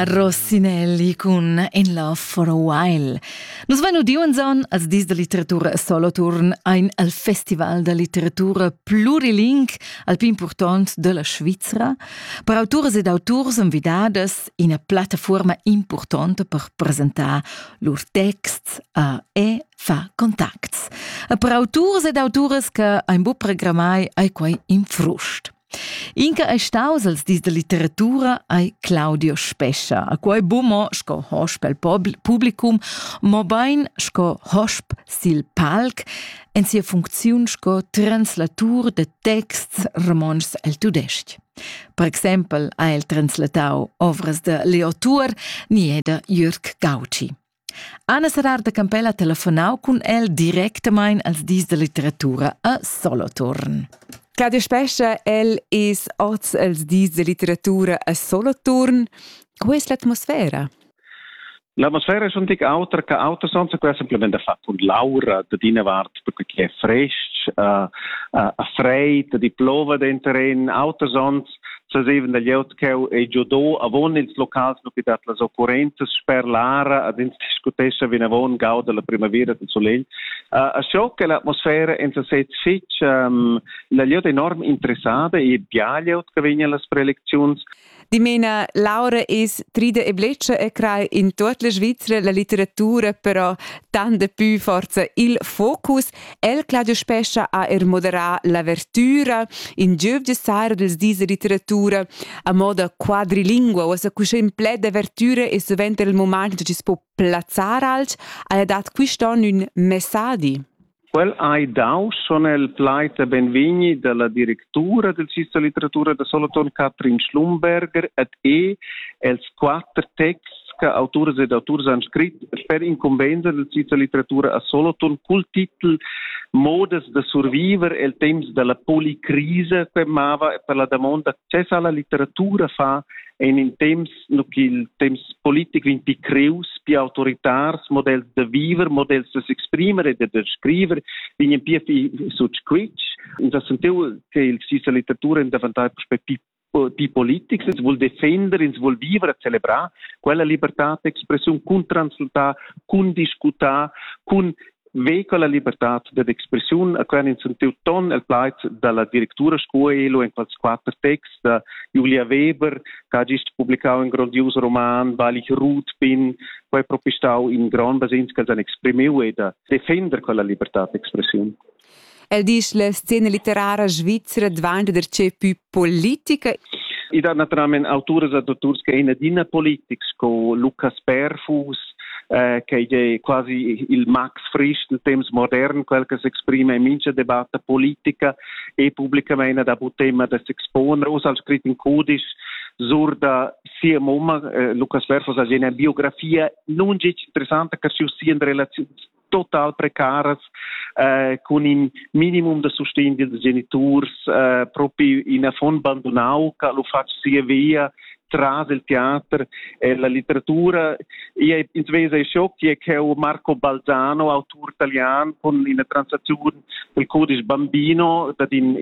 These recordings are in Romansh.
Rosinelli cun In Love for a While. Nus vein udiu enzon als dis da litteratura Soloturn ein al Festival da litteratura pluriling al pli impurtont della Svizra per autoras ed auturs envidadas ina plattaforma importante per presentar lur texts a e fa contacts. E per autors ed autoras che ein bu programmai ai quei in frust. Inca ei staus els dis da litteratura ei Claudio Spescha. A quei bu mo sco hosp el publicum, mo bein sco hosp sil palc en sia funcziun sco translatur de texts romontschs el tudestg. Per exempel ha el translatau ovras de Leo Tuor ni da Jürg Gauci. Anna Serrar da Campella ha telefonau cun el directamein als dis da litteratura a Soloturn. Cada spescha el es oz els dis da litteratura a Soloturn. Qual es l'atmosfera? L'atmosfera è schon tic autra che autres onns, quella semplament da fat und laura, da d'ina vart perché è frestg, uh, uh, ha freid, di plova dentro in, autres onns sazevan da glieud cheu ei giudò avon ils locals nu dat las occurrenzas sper l'ara ad ins discutescha vinavon gau dalla primavera del solegl uh, a scho che l'atmosfera en sesez fitch um, la glieud enorm interessada e bia glieud che vegna las prelecziuns Dimena, Laura es trida e bletscha e crai in tuot la Svizzera la litteratura però tant de pü forza il focus El Claudio Spescha ha er moderà l'avertüra, in giöv de sara dels dis de literatura a moda quadrilingua, o sa cuscin pled d'avertüra e suvent er il moment da chi's po plazzar alch, haja dat quist'on ün messadi. Quel hai dau son el pleita benvigni dalla directura del Cista Litteratura da Solothurn Katrin Schlumberger et e els quatter texts che autors ed auturs han scrit per incumbensa della Svizra litteratura a Solothurn cul titel Modas da surviver el temps dalla policrisa che mava per la damonda access alla litteratura fa en in temps no il temps politico in picreus più autoritars modells da viver modells da s'exprimer e da scriver vegn pia sut squitsch uns sentiu che il Svizra litteratura in davantai prospectiv die Politics, ins vul defender, ins vul vivere, celebrar quella libertad d'expressiun cun transultar, cun discutar, cun vehicle la libertad d'expressiun a quern ins sentiu ton el plaiz dalla directura Scuelo en quels quatter texts da Julia Weber che ha gist publicau in grondius roman Balich Ruth bin quei propistau in grand basins che han exprimiu e da defender quella libertad d'expressiun. El disch la scena litterara svizra dvanta darcheu pü politica I dat naturalmein autoras e dotturs che in adina politics co Lucas Perfus eh, che è quasi il Max Frisch del temps modern, quel che s'exprime in mincha debatta politica e pubblicamente da bu tema da s'expone. Os al scrit in codice sur da sia mamma, eh, Lucas Perfus, ha una biografia non interessante che si in relazioni total precaras eh, cun in minimum da sustegn dils geniturs eh, propi in affon bandunau che lu fatg sia via tras il teater e la letteratura. Io ins vesa e schoc che è Marco Balzano, autur italian, con una transazione del codice bambino, dat in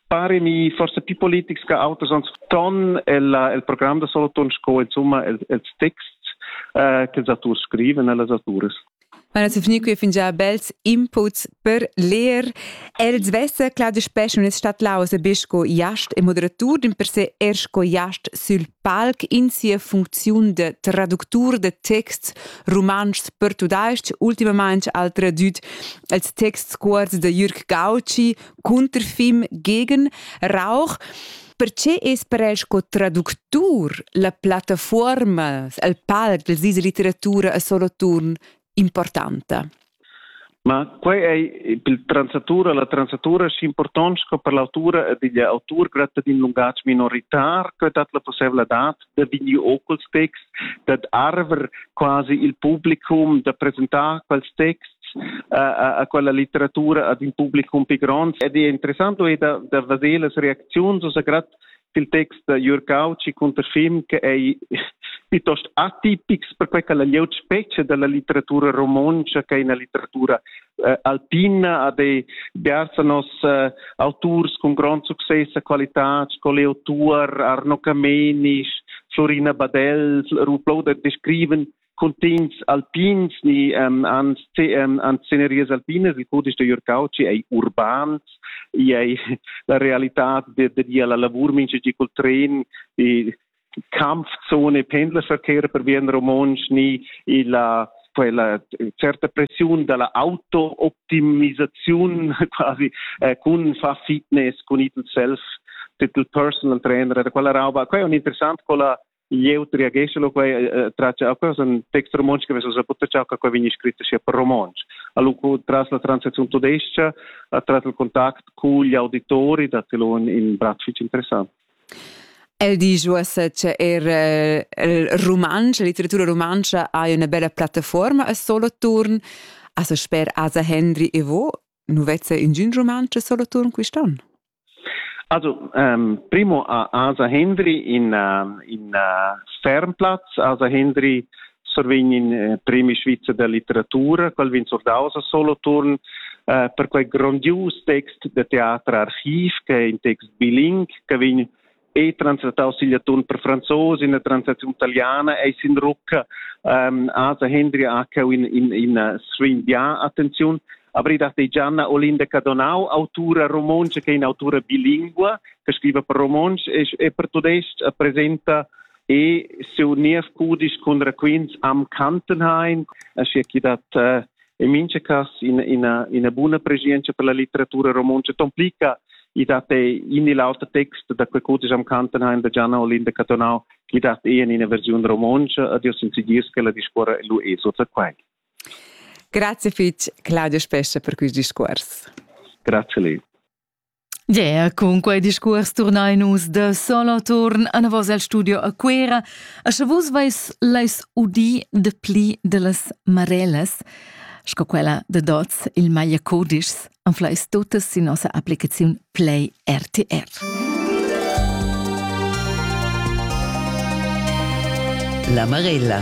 paremi forse più politics che auters ons ton el, el programm da Solothurn sco insomma els, els texts eh, che els autors scriven e las autores. Meine zu finir qui fingia bels inputs per leer. El svesse clar de spes non es stat laus a besco iast e moderatur din per se ersko iast sul palc in sia funziun de traductur de texts romanschs per tudaisch, ultimamente al tradüt als texts cuorts de Jürg Gauci, Cunterfim gegen Rauch. Perché es per el sco traductur la plattafuorma, il palc della Svizra Litteratura a Soloturn importante? Ma quei ei per transatura, la transatura schi important sco per l'autura ed igl autur gratta d'in lungatg minoritar, che dat la possibla dat da vegni ocul texts, dad arver quasi il publicum da presentar quels texts a, a quella litteratura ad in publicum pi grond. Ed è interessant è da, da vedere las reacziuns, also gerade il text da Jürg Kautschi cunter film che è piuttosto atipics per quella glieud specie della litteratura romontsch che è una litteratura eh, alpina ad ei biars nos eh, auturs con grond success e qualità sco Leo Tuor, Arno Camenisch, Florina Badell, Ruplou der descriven contins alpins ni um, an, um, an sceneries alpinas, il cudisch de Jörg Cauci ei urbans, ei la realità de, de, de la lavur mincha di col tren e Kampfzone, Pendlerverkehr per Wien romontsch ni illa quella certa pressiun dalla auto-optimisaziun quasi eh, cun fa fitness cun it self titel personal trainer da quella rauba quella è interessant quella jeu triageschelo quei eh, traccia quella san text romontsch che veso sa poter ciao che quei vegni scritto sia per romontsch allo tras la transazione tudesca tras il contact con gli auditori da telon in bratfic interessant El disch uossa cha eir il rumantsch, la litteratura rumantscha haja üna bella plattafuorma a Soloturn. Asa sper Asa Hendry e vo, nu vezza ingün rumantsch a Soloturn quist'on? Also, ähm, primo ha Asa Hendry in, äh, in äh, Fernplatz. Asa Hendry survegnin eh, premi svizzer da litteratura, quel vegn surdaus a solo turn eh, per quei grondius text de teatr archiv che è in text biling che vegn e translataus sigl atun per franzos in la translazione italiana e sin rucca um, asa Hendri Akau in in in svin dia attenzione abri dat Gianna Olinda Cadonau autura romonce che è in autura bilingua che scrive per romonsch e, e per tudesc presenta e sur nies cudisch cun raquints am Kantenhain, aschia chi dat uh, in mincha cas ina, ina, ina buna prescienza per la litteratura romontscha tomplica i dat e in il auter text da quel cudisch am Kantenheim da Gianna Olinda Catonau chi dat e in ina versiun romontsch ad io sinzigis che la discuora lu e sota quai. Grazie fitch Claudio Spescha per quist discuors. Grazie lei. Gea, cun quei discuors turnein nus da Soloturn anavos el studio a Cuera, a sche vus veis leis udì de pli dellas Marellas, sco quella de dots il Meyer Codischs anfleis totas sin nossa applicaziun Play RTR. La Marella